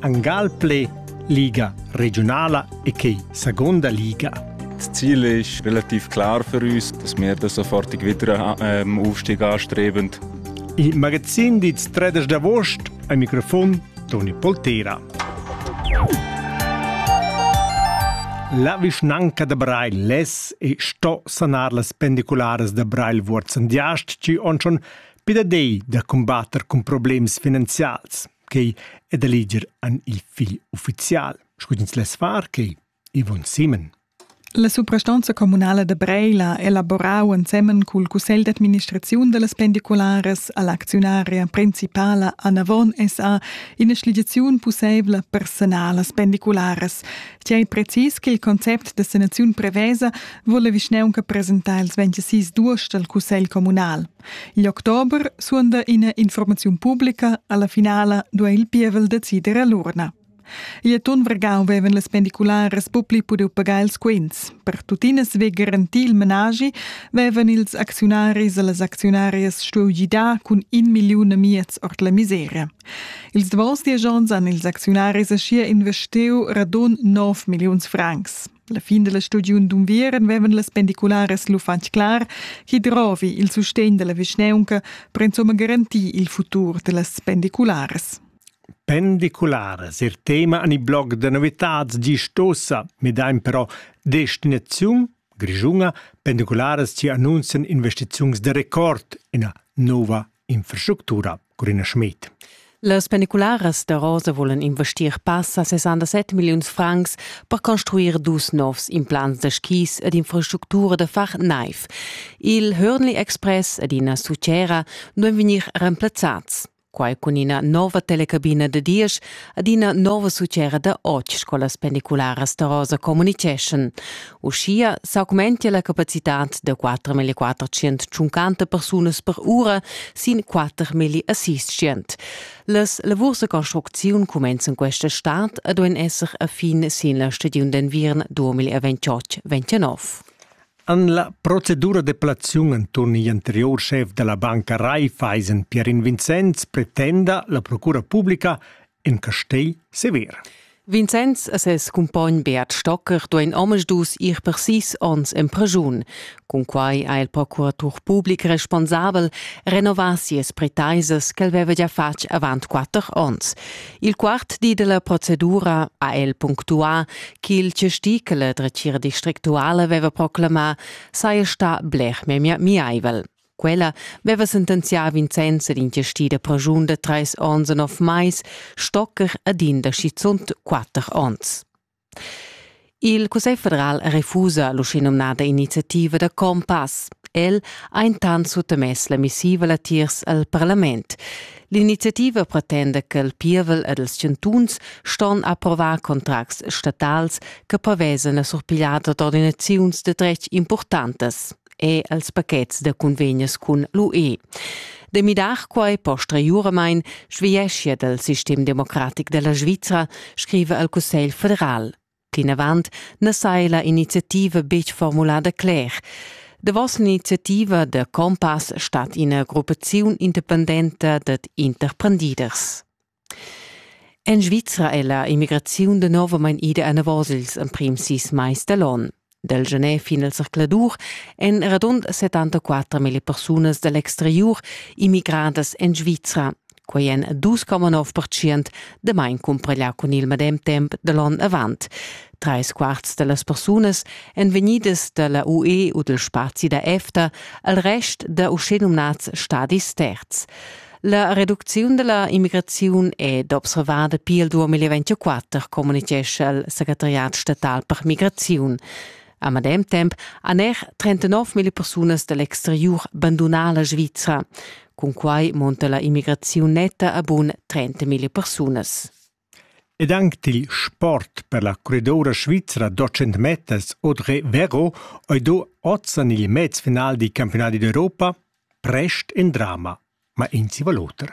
Angalple Liga regiunala e che seconda liga. Das Ziel ist relativ klar für uns, dass wir den sofortig wieder ähm, Aufstieg anstreben. Il magazzin di 13 d'agost al microfon Toni Poltera. La vischnanca da Breil les e sto sanar las pendicularas da Breil Vuorz an Diast, ci on schon pidadei da combatter cun problems finanzials. quei e da leger an il figl ufficial, scudins les far quei, Yvonne Simen. La suprastanza communala da Breila ha elaborau ensemen cul cussegl d'administraziun dallas pendicularas all'acziunaria principala Anavon SA ina schligiaziun pusseivla per sanar las pendicularas. Tiei precis che il concept da sanaziun prevesa vole vischneunca presentar ils 26 duos dal cussegl communal. Igl october suonda ina informaziun publica, alla finala duai il pievel decider a l'urna. Igl atun Vergau vevan las pendicularas pupli pudiu pagar ils quints. Per tuttina svei garantir il menagi vevan ils acziunaris e las acziunarias stuiu gidar cun in milliun e miez ord la miseria. Ils davos dies onns han ils acziunaris aschia investiu radun 9 milliuns francs. La fin della stagiun d'unviern vevan las pendicularas lu fatg clar che drovi il sustegn dalla vischneunca per insomma garantir il futur dellas pendicularas. Pendicularas, ir tema an i blog da novitats gist ossa, midain però destinaziun Grischunga pendicularas ci annunzian investiziuns de record ina nova infrastructura. Grüne Schmidt. Las pendicularas da Rosa volan investir passa 67 milliuns francs per construir dus novs implants da skis ed infrastructura da far naiv. Il Hörnli Express ed ina sucera non vegnir remplazzats. Quai cun ina nova telecabina da diesch ed ina nova sucera da otg scolas pendicularas da Rosa communiceschan. Uschia s'augmentia la capacitad da 4.400 tschuncanta persunas per ura sin 4.600. Las lavurs da construcziun cumenzan questa stad e duein esser a fin sin la stagiun d'enviern 2028-29. An la procedura de plaziun enturn igl anterior chef della banca Raiffeisen, Pierin Vincenz, pretenda la procura publica in castei sever. Vincenz e ses cumpogn Beat Stocker duein omisdus ir per sis onns en preschun. Cun quai ha il procuratur public responsabel renovà sias pretaisas ch'el veva già fatg avant quatter onns. Il quart di della procedura ha el punctuà ch'il testicel dretgira districtuale veva proclamà saja stà bler memia miaivel. Quella veva sentenzià Vincenz ed inchestida pensiun da trais ons e nov mais, stoccher ad in da schizunt quatter ons. Il Cussegl federal refusa l'uschenumnada iniziativa da Compass. El ha intant suttamess la missiva latiers al parlament. L'iniziativa pretenda che il pievel ed els chantuns ston approvar contracts statals che prevesan la surpigliada d'ordinaziuns de dretg importantas. e als pachets da convegnas cun l'UE. Da midar quai posteriuramain sveglieschia dal sistem democratic da la Svizra, scriva al Cussegl federal. Plinavant na saja la iniziativa betg formulada cler. Davos l'iniziativa da Compass stat ina gruppaziun independenta dad interprendiders. En Svizra è la immigraziun danovamein ida anavos ils emprims sis mais da l'onn. Dal gener fin al zercladur èn radund 74.000 persunas da l'exteriur immigradas en Svizra. Quai èn 2,9% damain cumprà cun il medem temp da l'onn avant. Trais quarts da las persunas èn vegnidas da la UE u dal spazi da EFTA, al rest da uschenumnads stadis terz. La reducziun della immigraziun è d'observada pil 2024, communicescha il segretariat statal per migraziun. A medem temp han er 39.000 persunas dall'exteriur bandunà la Svizra. Cun quai monta la immigraziun netta a bun 30.000 persunas. Ed anc til sport per la curridoura svizra d'otg meters Audrey Vero ei do oz en il mezfinal dil campiunadi d'Europa prest in drama, ma in ziva l'oter.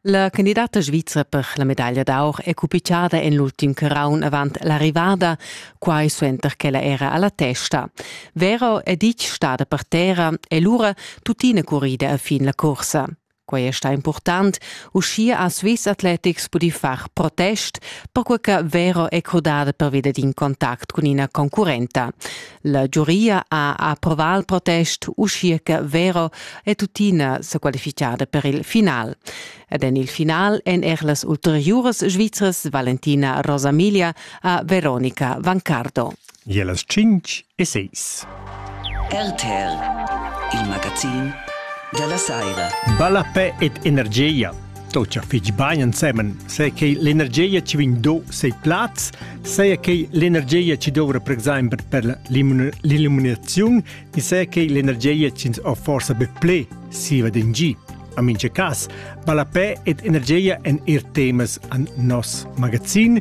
La candidata svizra per la medaglia d'aur è cupitgada en l'ultim caraun avant l'arrivada, quai suenter ch'ella era alla testa. Vero è ditg stada per terra e lura tuttina currida a fin la cursa. Quei è sta important, uschia ha Swiss Athletics pudi far protest, perquai che Vero è crudada pervida d'in contact cun ina concurrenta. La giuria ha approvà il protest, uschia che Vero è tuttina sa qualificada per il final. Ed en il final èn er las ulteriuras svizras Valentina Rosamiglia e Veronica Vancardo. Ie las tschinch e seis. RTR, il magazin da la saira. Ballapè ed energia. Tocha fich bain ensemen, sai che l'energia ci vegn do sei plaz, sai che l'energia ci dovrà per, per l'illuminazione e sai che l'energia ci ha forse be ple siva d'in gi. A mince cas, Ballapè ed energia en ir temas an nos magazin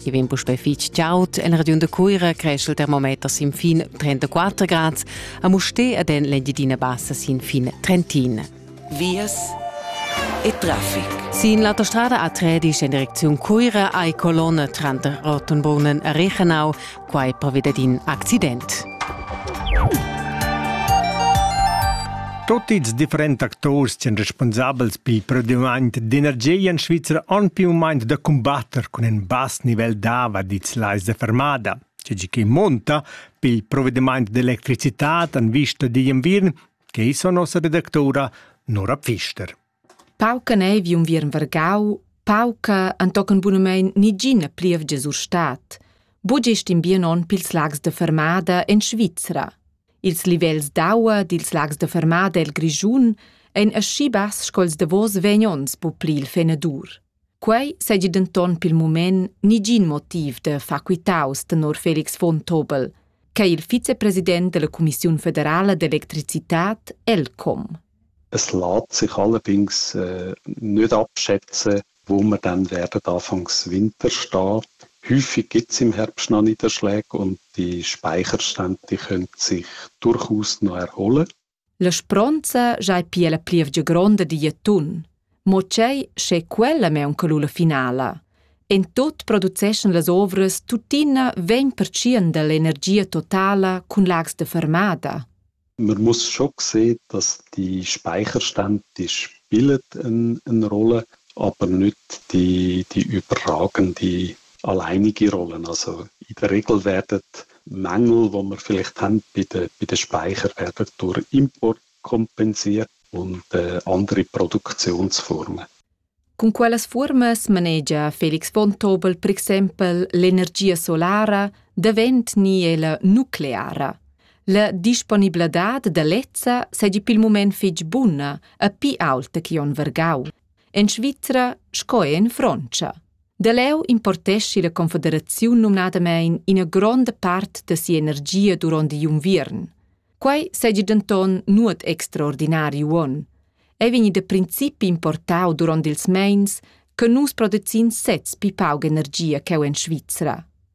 Chi vegn puspei fich chaud en regiun da Cuira creschel termometer sin fin 34 grad a Mustè ed en l'Engiadina Bassa sin fin 31. Vias e traffic. Sin l'autostrada a Tredisch in direcziun Cuira hai colonne tranter Rottenburnen e Rechenau, quai pervida d'in accident. Tot ils differents actors ch'en responsabels pil produmaint d'energia en Svizra han più u meins da combatter cun in bass nivel dava dits lais de fermada. Tgi che monta pil provvediment d'electricitat en vista digl inviern, che sono sa redactora Nora Pfister. Pauca neiv unviern vargau, pauca entochen bunamein nigina plievgia sur stad. Buc gest in bien onn pils lags da fermada en Svizra. Ils livels d'aua dils lags da fermada el Grischun ein aschi bass sco'ls davos vegn onns bu pli il fenadur. Quei seigi denton pil mument negin motiv da far quitaus tenor Felix von Tobel, ch'ei il vicepresident dalla cumissiun federala d'electricitad ELCOM. Es lässt sich allerdings äh, nicht abschätzen, wo wir dann werden anfangs Winter stehen. Häufig gibt es im Herbst noch Niederschläge und die Speicherstände die können sich durchaus noch erholen. La spronza giai pia la plievgia gronda digl atun. Mo tgei sche quella meunca lu la finala. En tut produceschan las ovras tuttina vegn pertschien dall'energia totala cun lags de fermada. Man muss schon sehen, dass die Speicherstände die spielen eine Rolle, aber nicht die, die überragende alleine gerollen. Also in der Regel werden Mängel, die wir vielleicht haben bei den, bei den Speichern, werden durch Import kompensiert und äh, andere Produktionsformen. Con quelles fuormas manegia Felix Vontobel per exempel l'energia solara davent ni ella nucleara? La disponibladad da lezza segi pil mument fitg buna, a pi aulta che on vergau. En Svizra sco en Frontscha. Da leu importeschi la confederaziun numnadamein ina gronda part da sia energia duront igl unviern. Quei seigi denton nuot extraordinari uonn. Ei vegni da principi importau duront ils meins che nus producin sez pi pauc energia cheu en Svizra.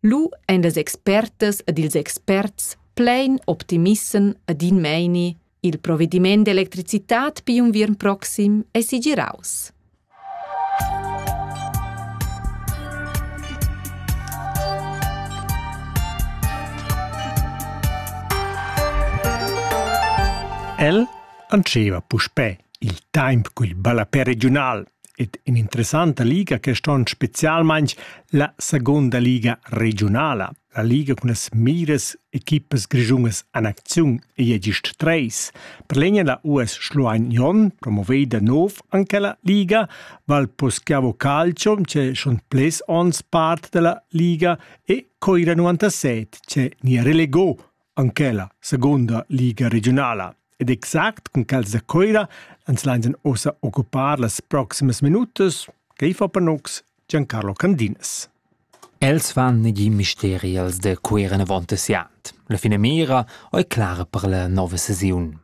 Lu ein las expertas ed ils experts plein optimissem ed in meini il provediment d'electricitad pigl unviern proxim ei segiraus. El antscheva puspè il temp cul ballapè regiunal ed in'interessanta liga quest onn spezialmain la segunda liga regiunala. La liga cun las miras equipas grischunas en acziun ei gist treis. Per legna la US Schluein Jon, promoveda nov anche la liga, Valposchiavo Calcio, c'è schon ples ons part della liga e Coira 97, c'è ni relegò Anc ella seguonda liga regiunala. Ed exact cun quels da Coira ans lainsan ossa occupar las proximas minutas. Quei fa per nox Giancarlo Candinas. Els van negin misteri als de Cuira avont siant. La finamira ei clara per la nova sesiun.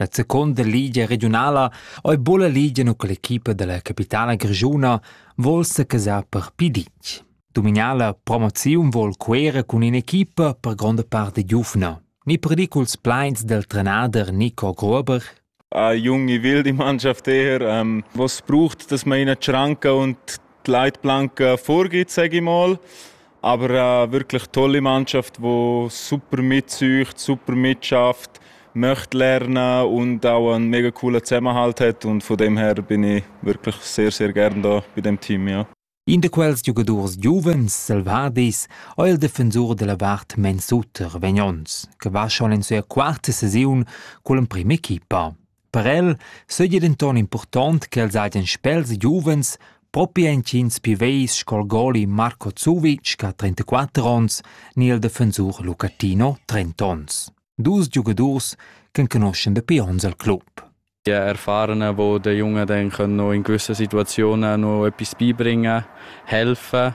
La seconda ligia regiunala ei buca ligia nu con l'equipa dalla capitala grischuna vuol secasar per pli ditg. Dominala promoziun vuol Cuera cun in'equipa per gronda part de giuvna. Ni perdiculs pleins del trenader Nico Gruber, ein Junge will die Mannschaft eher, ähm, was braucht, dass man ihnen die Schranke und die Leitplanke vorgibt, sage ich mal. Aber äh, wirklich tolle Mannschaft, die super mitsucht, super mitschafft, möchte lernen und auch einen mega coolen Zusammenhalt hat und von dem her bin ich wirklich sehr, sehr gern da bei dem Team. Ja. In de quels giugadurs giuvens selvadis ho il defensur della vart Mensuter vegn ons, che va schon in sua quarta sesiun col emprim equipa. Per el seigi denton impurtont ch'els hagien spels giuvens propi entgins piveis sco il goli Marco Zuvic che ha 34 onns ni il defensur Luca Tino 30 onns. Dus giugadurs ch'enconuschen dapi onns il club. Die Erfahrenen, die den Jungen dann in gewissen Situationen noch etwas beibringen können, helfen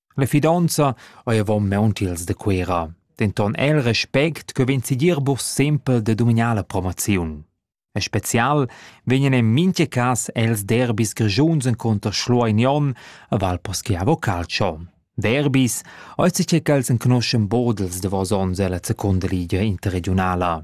La fidonza ei avon maun tiels da Cuera, denton el respect che vegn sigir buc sempel da dumignar la promoziun. En special vegnan en mintga cas els derbis grischuns encunter Schlueinion a Valposchiavo Calcio. Derbis ei che els enconuschen bodels davos onns ella secunda ligia interregionala.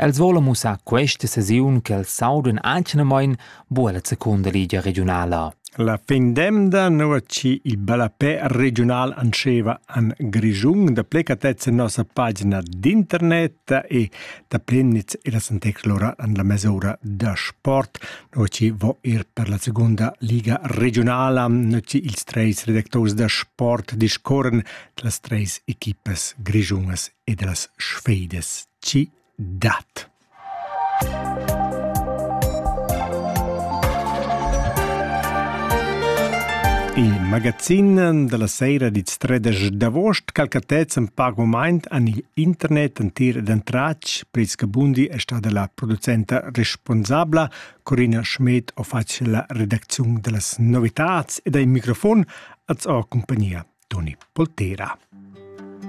Els volan mussar questa sesiun ch'els saudan anch'namain bu alla secunda ligia regiunala. La fin d'emda, nua chi il ballapè regiunal antscheva an Grischun, da plecatezza nossa pagina d'internet e da plenitz e las antexlora an la mesura da sport, nua chi vo ir per la segunda liga regiunala, nua chi ils treis redactors da sport discorren las treis equipas grischungas ed las sfeidas chi dat. Il magazin da la seira dits tredesch d'avost calcatets in pac moment an il internet entir ed entratg. Pris Gabundi è stada la producenta responsabla. Corina Schmidt ho fatg la redacziun da las novitats ed ai microfon als ho compagnia Toni Poltera.